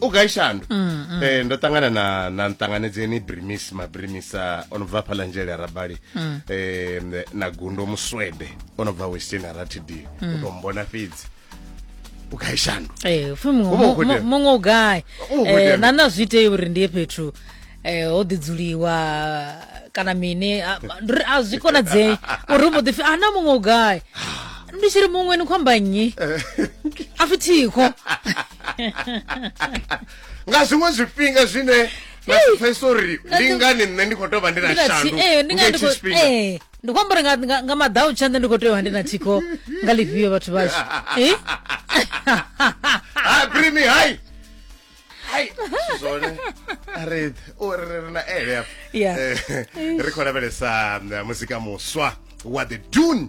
u gai shandu mm, mm. eh, ndo ṱangana na na nṱanganedzeni brimis mabrimisa o no bva hafha lanzhele a rabali mm. eh, na gundo muswede o no bva western aratd mm. u to mbona fhedzi u gai shandu eh, muṅwe u gai eh, na na zwi itei uri ndi ye fhethu eh, ho ḓidzuliwa kana mini a zwi konadzei uri u mbo ḓipfi ana muṅwe u gai ndi tshi ri muṅwe ni khomba nnyi a fithiho nga zwiṅwe zwifhinga zwine na si pfesa uri ndi ngani nṋe ndi khou tou vha ndi na shandu eh, nga hetshi tshifhinga eh, ndi khou amba uri nga maḓau tsha nṋe ndi khou tea u vha ndi na thikho nga ḽifhio vhathu vhashu eh? ah, bring me high hai zwone ri ri na ele ri khou lavhelesa muzika muswa wa the dune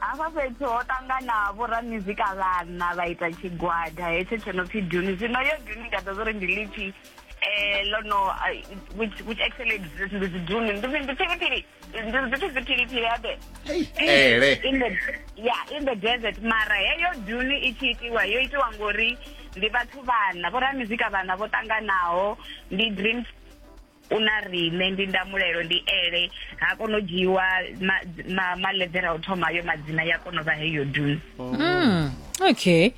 hafha fhethu ho ṱangana vhoramizika vhana vha ita tshigwada hetsho tsho no pfi duni zwino yo duni ndi ḓa zwori ndi lipfi eh lo no which which actually exists ndi dzi duni ndi ndi pfiri pfiri ndi ndi pfiri pfiri pfiri abe ele in the yeah in the desert mara heyo duni i tshi itiwa yo itiwa ngori ndi vhathu vhana vhoramizika vhana vho ṱanganaho ndi dream u na riṋe ndi ndamulelo ndi ele ha kono dzhiwa ma, ma, maledera o thoma yo madzina ya kono vha heyo dun mm. okay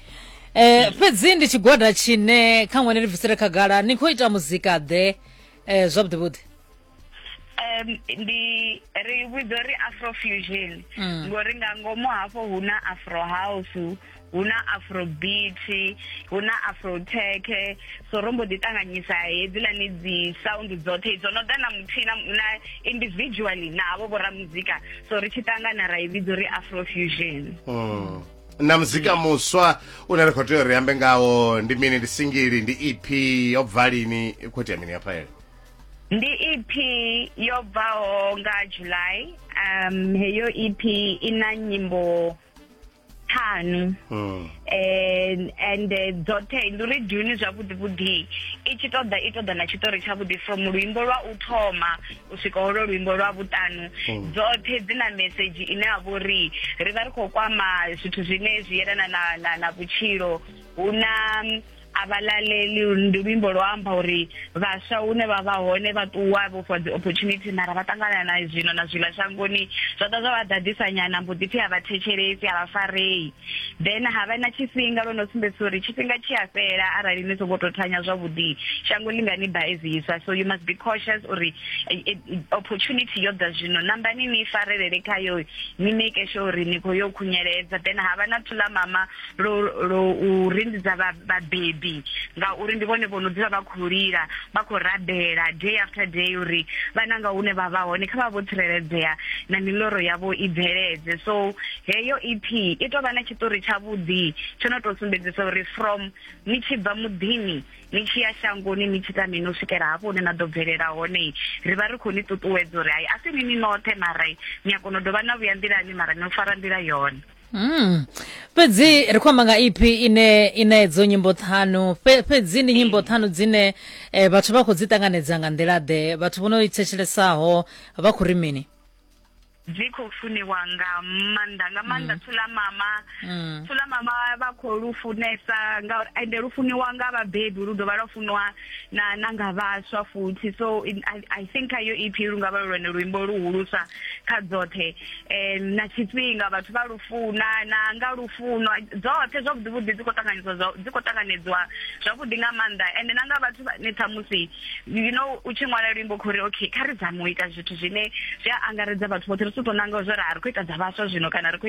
eh fhedzi ndi tshigwada tshine kha ṅwene ri bvisele khagala ni khou ita muzika ḓe eh zwavhuḓi vhuḓi um ndi ri vhidza uri afrofusion ngori nga ngomu hafho hu na afro house hu na afrobeat hu na afrotech so ro mbo ḓi ṱanganyisa hedzilani dzi sound dzoṱhe idzo no ḓa na muthihi na individually navho vho ramuzika so ri tshi ṱangana ra i vhidza uri afrofusion mm. na muzika muswa une ri khou tea uri ambe ngawo ndi mini ndi singili ndi ep yo bva lini khou itea mini hafhaele ndi ep yo bvaho nga july um heyo ep i na nyimbo ṱhanu hmm. eh, and eh, dzoṱhe ndi uri duni zwavhuḓi vhuḓi i tshi ṱoḓa i ṱoḓa na tshiṱori tshavhuḓi from luimbo lwa u thoma u swika holo luimbo lwa vhuṱanu hmm. dzoṱhe dzi na mesedzhi ine ya vha uri ri vha ri khou kwama zwithu zwine zwi yelana na vhutshilo hu na a vha laleli ndi luimbo lwo amba uri vhaswa hune vha vha hone vha ṱuwa vho fhiwa dzi opportunity mara vha ṱangana na zwino na zwiḽa shangoni zwa ḓa zwa vha ḓaḓisa nyana mbo ḓi pfhi a vha thetshelesi a vha farei then ha vha na tshifhinga lwo no sumbedzisa uri tshifhinga tshi a fhela arali ni songo tou thanya zwavhuḓi shango ḽi nga ni ba eziswa so you must be cautious uri eh, eh, opportunity yo ḓa zwino nambani ni farelele khayo ni make sure uri ni khou yo khunyeledza then ha vha na thula mama lo lo u rindidza vhabebi ngauri ndi vhone vho no dzula vha khou lila vha khou rabela day after day uri vhana nga hune vha vha hone kha vha vho tsireledzea na miloro yavho i bveledze so heyo ep i tou vha na tshiṱori tshavhuḓi tsho no tou sumbedzisa uri from ni tshi bva muḓini ni tshi ya shangoni ni tshi ta mini u swikela hafho hune na ḓo bvelela hone ri vha ri khou ni ṱuṱuwedza uri hai a si ni ni noṱhe mara ni a kona u dovha na vhuya nḓilani mara ni fara nḓila yone Mm. fhedzi ri khou amba nga ipi ine ina edzo nyimbo ṱhanu Fhe- fhedzi ndi nyimbo ṱhanu dzine eh, vhathu vha khou dzi ṱanganedza nga nḓila-ḓe vhathu vho no i thetshelesaho vha khou ri mini dzi khou funiwa nga maanḓa nga maanḓa thula mama thula mama vha khou lu funesa ngauri ende lu funiwa nga vhabebi lu dovha lwa funiwa na nanga vhaswa futhi so in, I, i think ayo ep lungavha lwone luimbo luhulusa kha dzoṱhe um na tshifhinga vhathu vha lufuna na nga lufuno dzoṱhe zwavhuḓi vhuḓi dzi khou ṱanganyiswa dzi khou ṱanganedzwa zwavhuḓi nga maanḓa ende na nga vhathu vhane ṱhamusi you know u tshi ṅwala luimbo khou ri okay kha ri zame u ita zwithu zwine zwi a angaredza vhathu vhoṱhe ri si tou nanga zwo ri a ri khou ita dza vhaswa zwino kana ri khou